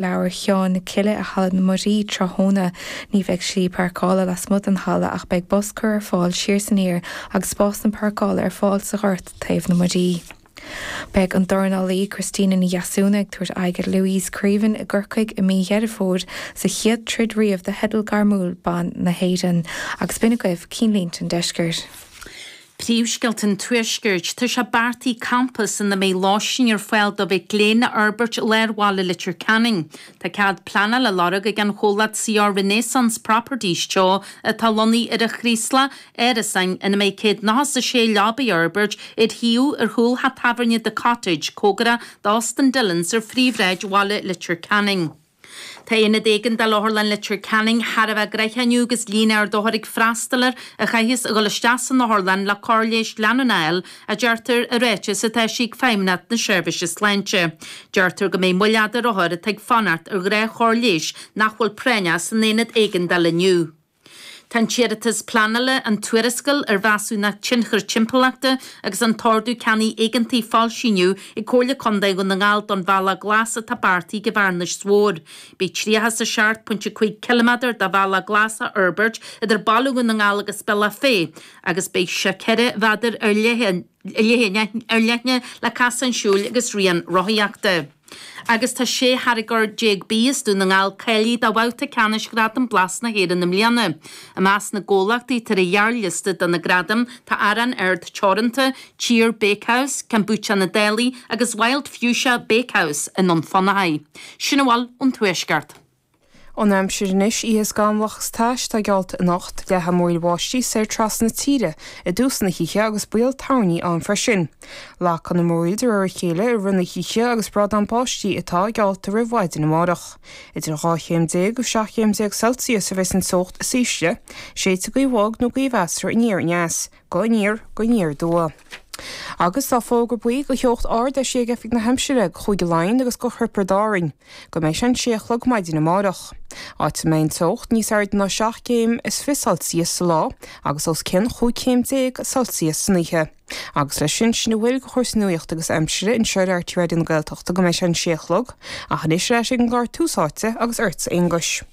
leabhar Sheáin na Cille i Halla na Muirí tráthnóna. Ní bheidh slí páirceála lasmuigh den halla ach beidh bus curtha ar fáil siar is aniar agus spásanna páirceála ar fáil sa ghort taobh na Muirí. Beidh an dornálaí Christina Ní Dheasúna ag tabhairt aghaidh ar Louise Creaven i gCorcaigh i mí Dheireadh Fómhair sa chéad troid riamh do theideal gairmiúil ban na hÉireann. Agus b'in agaibh cinnlínte an deiscirt. Príomhscéalta an Tuaiscirt. Tá sé beartaithe campas ina mbeidh lóistín ar fáil do mhic léinn a fhorbairt i lár bhaile Leitir Ceanainn. Tá cead pleanála á lorg ag an chomhlacht CR Renaissance Properties Teo atá lonnaithe ar an Chraoslach, árasáin ina mbeidh 196 leaba a fhorbairt ar shuíomh ar chúl theach tábhairne The Cottage, comhgarach d'Óstán Dillons ar phríomhshráid bhaile Leitir Ceanainn. Tá Aonad Éigeandála Otharlann Leitir Ceanainn thar a bheith gnoitheach inniu agus líon ard othar ag freastal air a chaithfeas a dhul isteach san otharlann le cóir leighis leanúna a fháil, a deirtear i ráiteas atá eisithe ag Feidhmeannacht na Seirbhíse Sláinte. Deirtear go mbeidh moill fhada ar othair atá ag fanacht ar dhea chóir leighis nach bhfuil práinneach san Aonad Éigeandála inniu. Tá an t-iarratas pleanála, an tuarascáil ar Mheasúnacht Tionchair Timpeallachta agus an tOrdú Ceannaigh Éigeantaigh foilsithe inniu ag Comhairle Contae Dhún na nGall don Bhealach Glas atá beartaithe don Bhearnas Mór. Beidh 37.5 km de bhealach glas á fhorbairt idir Baile Dhún na nGall agus Bealach Féich agus beidh sé 4 mhéadar ar leith. leithne ar leithne le casáin siúil agus rian rothaíochta. Agus tá sé tháirgeoir déag bídh as Dún na nGall cáilithe do bhabhta ceannais Ghradaim Blas na hÉireann i mbliana. I measc na gcomhlachtaí atá ar an ghearrliosta do na gradaim tá Arán Ard Teoranta, Tír Bakehouse, Kombucha na Dálaigh agus Wild Fuchsia Bakehouse i nDún Fionnachaidh. Sin a bhfuil ón Tuaisceart. An aimsir anois oíche scamallach is tais atá geallta anocht, leathfaidh múraíl bháistí soir trasna na tíre i dtús na hoíche agus baol toirní ann freisin. Lagfaidh na múraíl de réir a chéile i rith na hoíche agus brádán báistí atá geallta roimh mhaidin amárach. Idir 12 chéim agus 17 chéim Celsius a bheas an teocht is ísle, séidfidh gaoth bhog nó gaoth mheasartha aniar aneas. Go aniar, go aniar aduaidh. Agus tá fógra buí do theocht ard eisithe ag oifig na haimsire, do Chúige Laighean agus do Thiobraid Árann, go mbeidh sé an sé a chlog maidin amárach. Áit a mbeidh an teocht níos airde ná seacht gcéim is fiche Celsius sa lá agus os cionn chúig chéim déag Celsius san oíche. Agus leis sin, sin a bhfuil de chúrsaí nuaíochta agus aimsire anseo ar RTÉ Raidió na Gaeltachta, go mbeidh sé an sé a chlog, ach anois ar ais ag an gclár Tús Áite agus ortsa a Aonghuis.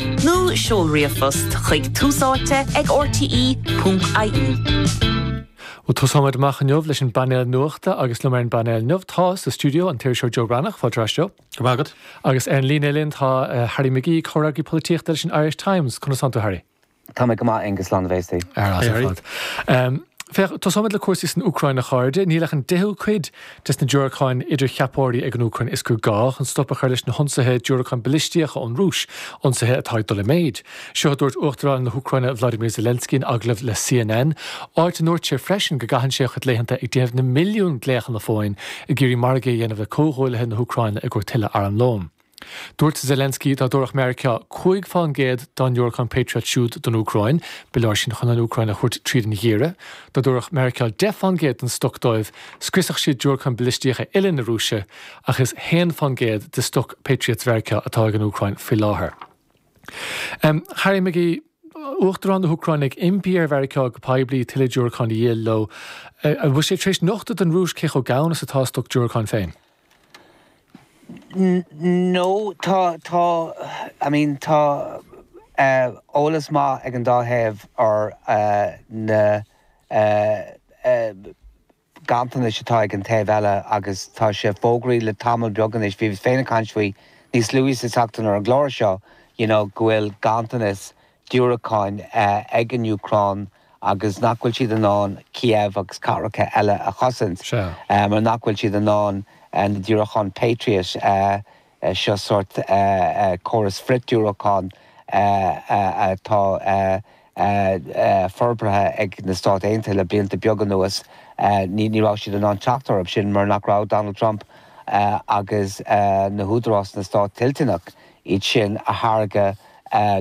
Nó seol ríomhphost chuig túsáite ag RTÉ.ie. Bhuel, tosóimid amach inniu leis an bpainéal nuachta agus liom ar an bpainéal inniu tá sa stiúideo an t-iriseoir Joe Breathnach, fáilte ar ais Joe. Go raibh maith agat. Agus ar an líne linn tá eh, Harry McGee, comhfhreagraí polaitíochta leis an Irish Times. Conas tánn tú, Harry? Tá mé go maith Aengus Lán na bhFéastaí. Ar fheabhas ar fad. Ehm, féach, tosóimid le cúrsaí san Úcráin a chairde, níl ach an 10ú cuid de sna diúracáin idircheapóirí ag an Úcráin is gá chun stop a chur leis na hionsaithe diúracáin balistíocha ón Rúis, ionsaithe atá ag dul i méid. Seo a dúirt Uachtarán na hÚcráine Vladimir Zelensky in agallamh le CNN, áit a ndúirt sé freisin go gcaitheann sé a chuid laethanta ag déanamh na milliún glaochanna fóin ag iarraidh margaí a dhéanamh le comhghuaillithe na hÚcráine i gcomhair tuilleadh armlóin. Dúirt Zelensky dá dtabharfadh Meiriceá cúig faoin gcéad dá ndiúracáin Patriot siúd don Úcráin, ba leor sin chun an Úcráin a thabhairt tríd an gheimhreadh. Dá dtabharfadh Meiriceá deich faoin gcéad den stoc dóibh, scriosfadh siad diúracáin bhalaistíocha uile na Rúise, ach is 1 faoin gcéad de stoc Patriots Mheiriceá atá ag an Úcráin faoi láthair. Harry McGee, Uachtarán na hÚcráine ag impí ar Mheiriceá go poiblí tuilleadh diúracán a dhíol leo. An bhfuil sé tar éis nochtadh don Rúis cé chomh gann is atá a stoc diúracán féin? No, tá, tá, I mean, tá eolas maith ag an dá thaobh ar na ganntanais atá ag an taobh eile agus tá sé fógraithe le tamall beag anois, bhíos féin ag caint faoi níos luaithe sa tseachtain ar an gclár seo, you know, go bhfuil ganntanas diúracáin ag an Úcráin agus nach bhfuil siad in ann Kiev agus cathracha eile a chosaint mar nach bhfuil siad in ann na diúracáin Patriot seo, sórt córas frith-diúracán atá forbartha ag na Stáit Aontaithe le blianta beaga anuas, ní raibh siad in ann teacht orthu sin mar nach raibh Donald Trump agus na húdaráis sna Stáit toilteanach iad sin a thairiscint